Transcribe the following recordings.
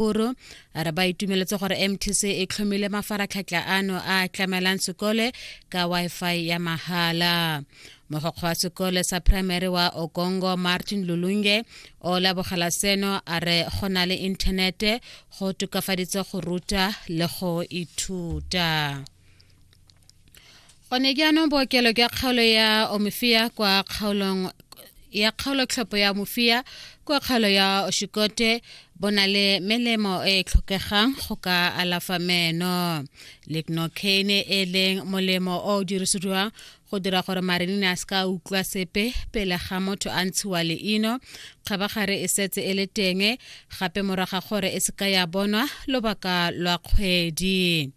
Kgoro a re ba itumeletse gore mtc e tlhomile mafaratlhatlha ano a tlamelang sekole ka wifi ya mahala mogokgo wa sekole sa primary wa okongo martin lulunge o labogela seno a re go na le inthanete go tokafaditse go ruta le go ithuta gone jaanong bookelo jwa kgaolo ya omofia kwa kgaolong ya kgaolotlhopho ya mofia kwa kgaolo ya oshikote bo na le melemo e e tlhokegang go ka alafa meno lignocaine e leng molemo o o dirisediwang go dira gore marenine a se ka utlwa sepe pele ga motho a ntshiwa leino kgabagare e setse e le teng gape moraga gore e se ka ya bonwa lobaka lwa kgwedi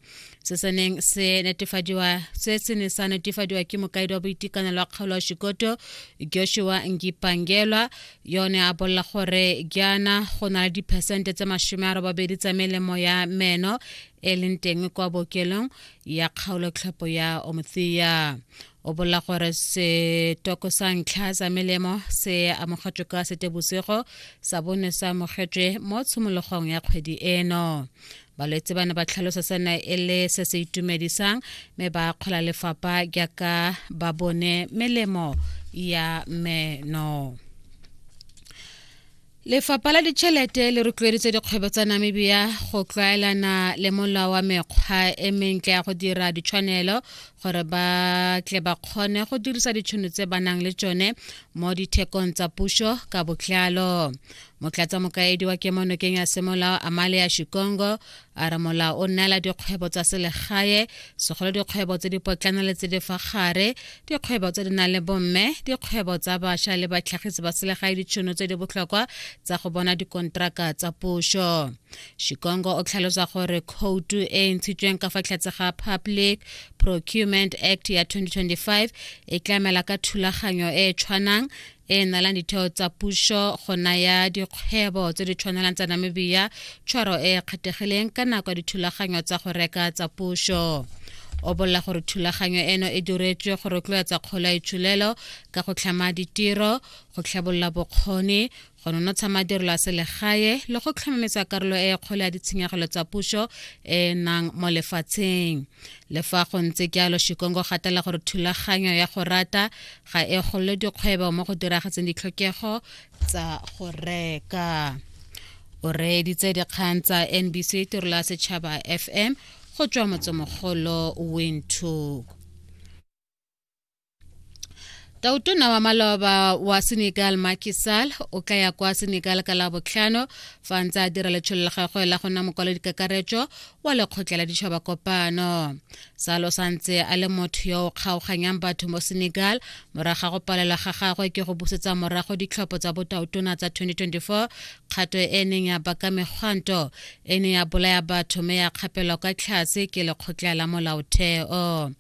se se neng se netefadiwa se se ne sa netefadiwa ke mokaedi wa boitekanelo wa kgaolo wa shikoto joshua ngipangelwa yone a bolela gore jaana go na le diphesente tse masome a robabedi tsa melemo ya meno e leng teng kwa bookelong ya kgaolo tlhopo ya omothea o bolela gore setoko sa ntlha sa melemo se amogetšwe ka setebosego sa bone se amogetšwe mo tshimologong ya kgwedi eno balwetse ba ne ba tlhalosa sena e le se se itumedisang mme ba kgola lefapha jaaka ba bone melemo ya meno lefapha la ditšhelete le rotloeditse dikgwebo tsa namibia go tlwaelana le molao wa mekgwa e mentle ya go dira ditshwanelo gore ba tle ba kgone go dirisa ditšhono tse ba nang le tsone mo dithekong tsa puso ka botlalo motlatsa mokaedi wa kemonokeng ya semolao amale ya shikongo a re molao o neela dikgwebo tsa selegae segolo dikgwebo tse di potlana le tse di fa gare dikgwebo tse di nang le bomme dikgwebo tsa bašwa le batlhagisi ba selegae ditšhono tse di botlhokwa tsa go bona dikontraka tsa puso shikongo o tlhalosa gore khoutu e e ntshitsweng ka fa tlhatse ga public procurement act ya 2025 e tlamela ka thulaganyo e e tshwanang e nalang ditheo tsa puso go naya dikgwebo tse di tshwanelang tsa namibia tshwaro e e kgethegileng ka nako ya dithulaganyo tsa go reka tsa puso o bolela gore thulaganyo eno e diretswe go rotloetsa kgolo ya itshulelo ka go tlhama ditiro go tlhabolola bokgoni go nonotsha madirelo a selegae le go tlhomametsa karolo e kgolo ya ditshenyegelo tsa puso e nang mo lefatsheng le fa go ntse jalo shikongo gatela gore thulaganyo ya go rata ga e golole dikgwebo mo go diragatseng ditlhokego tsa go reka o reeditse dikgang tsa nbc tirola setšhaba fm go tswa motsemogolo windhoek tautona wa maloba wa senegal makisal o tla ya kwa senegal ka labotlhano fa ntse a dira letshololo la gagwe la go nna mokwalodikakaretso wa lekgotla la ditšhaba kopano salo sa ntse a le motho yo o kgaoganyang batho mo senegal morago ga go palelwa ga gagwe ke go busetsa morago ditlhopho tsa botaotona tsa 2024 kgato e neng ya baka megwanto e ne ya bolaya batho me ya kgapelwa kwa tlhase ke lekgotla la molaotheo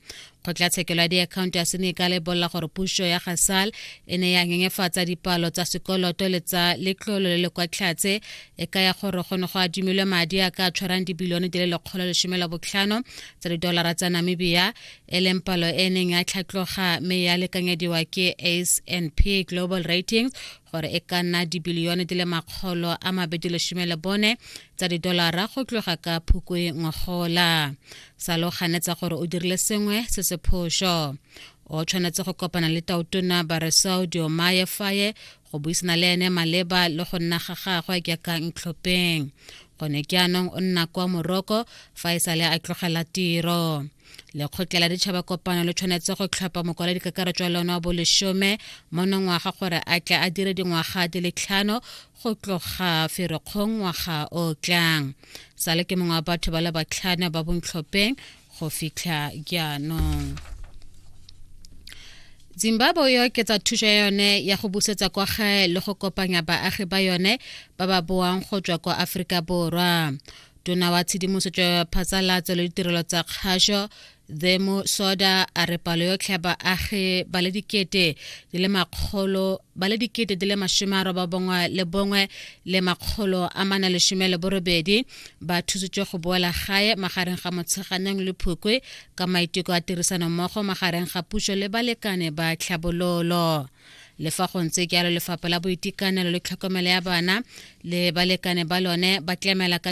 kgotlatshekelo ya diakhaonto ya sene e ka lebolela gore puso ya gasal e ne ya nyenyefatsa dipalo tsa sekoloto le tsa letlolo le le kwa tlhatse e ka ya gore go ne go adimilwe madi a ka tshwarang dibilione di le lekgolo lesome la botlhano tsa didolara tsa namibia e leng palo e neng ya tlhatloga mme ya lekanyediwa ke ace and p global ratings gore e ka nna dibilione di le makgolo a mabedi lesome le bone tsa didolara go tloga ka phukwe ngogola sa lo ganetsa gore o dirile sengwe se se phoso o tshwanetse go kopana le tautona baresao diomaye faye go buisana le ene maleba le go nna ga gagwe ke ka ntlhopheng gone ke anong o nna kwa moroko fa e sale a tlogela tiro lekgotla la ditšhaba kopano le tshwanetse go tlhopha mokwaledi kakaretso wa lone wa bolesome mo nongwaga gore a tle a dire dingwaga di le tlhano go tloga ferekgong ngwaga o tlang sale ke mongwe wa batho ba le batlhana ba bontlhopheng go fitlha jaanong zimbabwe e oketsa thuso ya yone ya go busetsa kwa gae le go kopanya baagi ba yone ba ba boang go tswa kwa aforika borwa tona wa tshedimosetso ya phatsalatso le ditirelo tsa kgašo the mosoda a re palo yotlhe ya baagi ba le dikete di le makgolo ba le dikete di le masome a roba bongwe le bongwe le makgolo a mana lesome le borobedi ba thusitswe go boela gae magareng ga motsheganeng le phukwe ka maiteko a tirisano mmogo magareng ga puso le balekane ba tlhabololo le fa go ntse jalo lefapha la boitekanelo le tlhokomelo ya bana le balekane ba lone ba tlamela ka